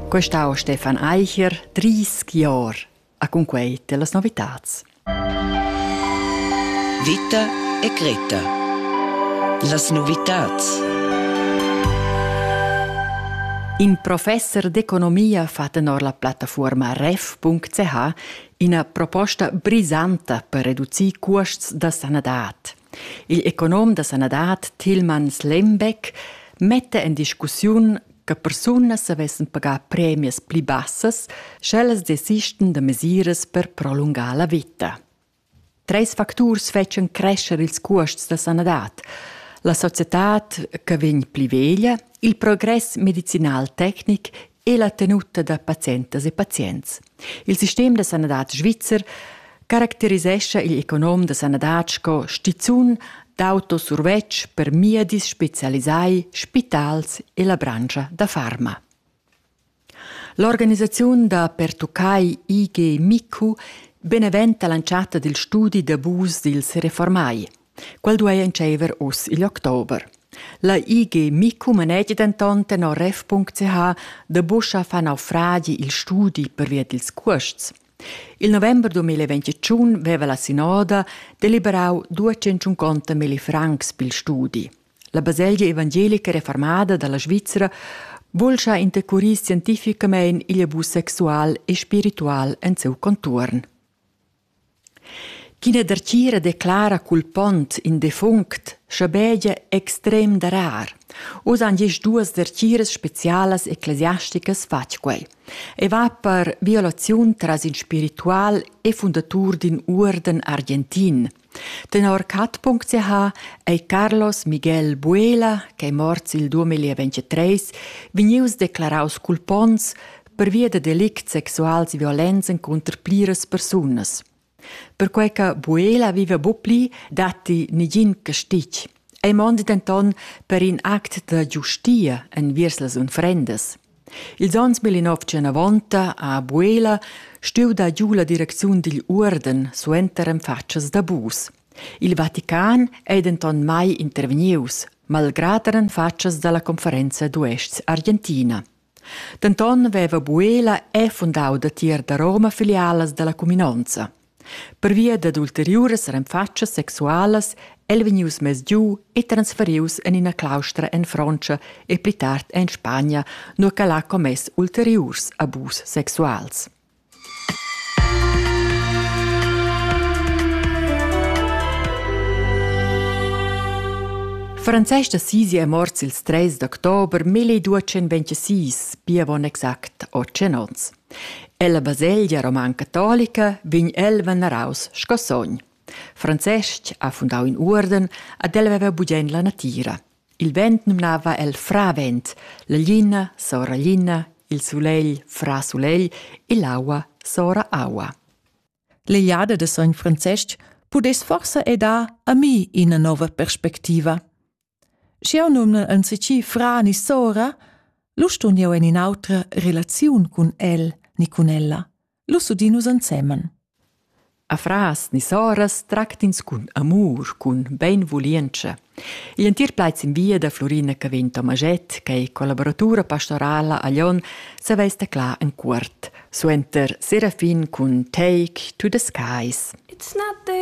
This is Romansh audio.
Quest'au Stefan Eicher, 30 Jahre, a con quei te las novitats. Vita e Greta. Las novitats. In professor d'economia fa tenor la plattaforma ref.ch ina proposta brisanta per reducir cuosts da sanadad. Il econom da sanadad Tilman Slembeck metta en discussiun che persunas savessen pagar premias pli bassas, sch'ellas desistan da mesiras per prolungar la vita. Treis facturs fetschan crescer ils cuosts da sanadad. La societad che vegn pli veglia, il progress medicinal tecnic e la tenuta da pazientas e pazients. Il sistem da sanadad svizzer caracterisescha il econom da sanadad sco stizun d'autosurvetsch per miedis spezialisai, spitals e la branscha da farma. L'organisaziun da pertuccai IG MICU beneventa l'entschatta dil studi d'abus dils reformai. Quel duei entscheiver uss igl october. La IG Micu manegi denton tenor ref.ch da buscha fa naufragi il studi pervia dils cuosts. Il november 2021 veva la sinoda deliberau 250 milli francs pil studi. La baselgia evangelica reformada dalla Svizra vulscha intercurir scientificamein igl abus sexual e spiritual en seu contuorn. Ch'ina dertgira declara cul pont in defunct schabegia extrem darar. Oz han gist duas dertgiras specialas ecclesiasticas fatg quei. E va per violaziun tras in spiritual e fundatur d'in uorden argentin. Tenor cat.ch ei Carlos Miguel Buela, ch'ei morts il 2023, vegnius declaraus cul pons pervia da delicts sexuals e violenza encunter pliras persunas. Perquei che Buela viva bu pli, datti negin castig. Ei mondi denton per in act da giustia enviers las unfrendas. Ils onns 1990 a Buela stuiu dar giu la direcziun digl uorden suenter en fatschas d'abus. Il Vatican ei denton mai intervegnius, malgrad er en fatschas dalla conferenza d'uests Argentina. Denton veva Buela è fundau datier da Roma filialas dalla cuminonza. Pervia dad ulteriuras renfatschas sexualas el vegnius mess giu e transferius en ina claustra en Frontscha e pli tard en Spagna, nua ch'el ha commess ulteriurs abus sexuals. Francestga Sisi è mort ils 3 d'october 1226, pia bon exact 8 onns. Ella baselgia roman catolica vegn el veneraus sco sogn. Francestg ha fundau in uorden ad el veva bugen la natira. Il vent numnava el fravent, la glina sora glina, il sulegl fra sulegl e l'aua sora aua. L'Eiada de sogn Francesc pudess forsa e dar a mi ina nova perspectiva. Schiau numnan anzici fra ni sora, lu stun jeu en in'autra relaziun cun el ni cun ella. Lu udin nus ensemen. Afras ni soras tractins cun amur, cun beinvulientscha. Igl entir plaid sin via da Florina Cavin Tomaget, che è collaboratura pastorala a Lyon, saveis teclar en cuort. Suenter Serafin cun Take to the Skies. It's not the